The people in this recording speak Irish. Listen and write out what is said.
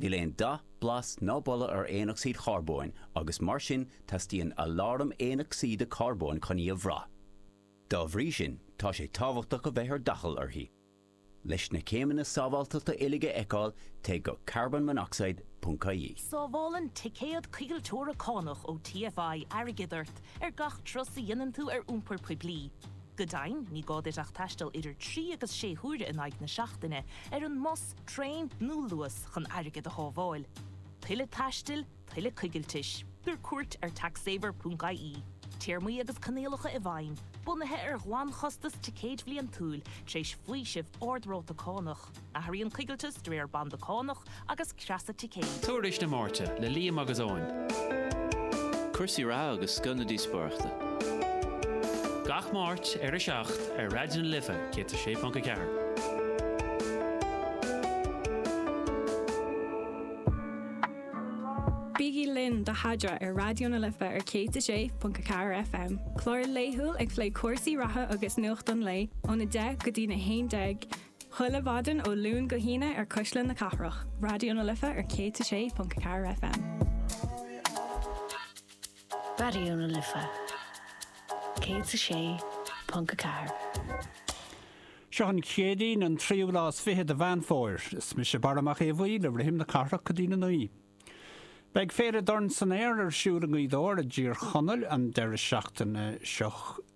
Níl aon dath, blas ná boladh ar aonocsaíd charbóin agus mar sin teastaíonn aláram aonocsaíde carbóin chun í a bhrath. Dá bhrí sin tá sé tábhachtach a bheith ar d'aicill uirthi. Leis na céimeanna sábháilteachta uilig a fheiceáil téigh go carbonmonoxide ponc ie. Sábhálann ticéad coigilteora cánach ó TFI airgead ort ar gach turas a dhéanann tú ar iompar poiblí. Go deimhin, ní gá duit ach taisteal idir trí agus sé huaire in aghaidh na seachtaine ar an mbus, Traein nó Luas chun airgead a shábháil. Tuilleadh taistil, tuilleadh coigiltis. Tabhair cuairt ar taxsaver.ie. Téarmaí agus coinníollacha i bhfeidhm, bunaithe ar ghlanchostas ticéid bhliantúil, tar éis faoiseamh ard-ráta cánach. Athraíonn coigilteas de réir banda cánach agus creasa ticéid. Tuairisc na Máirte le Liam agus Eoin. Cúrsaí reatha agus scoth na díospóireachta. Gach Máirt ar 7 ar Raidió na Life 106.4. Bígí linn do Adhmhaidin ar Raidió na Life ar 106.4 FM, clár laethúil ag plé cúrsaí reatha agus nuacht an lae, óna 10 go dtína 11, Chuile mhaidin ó Luan go hAoine ar Cuisle na Cathrach, Raidió na Life ar 106.4 FM. Raidió na Life 106.4. Seo an Chéadaoin an tríú lá is fiche de Mheán Fómhair. Is mise Barra Mac Aodha Bhuí le rithim na cathrach go dtína naoi. Beidh Féile Dorn San Aer ar siúl i nGaoth Dobhair i dTír Chonaill an deireadh seachtaine seo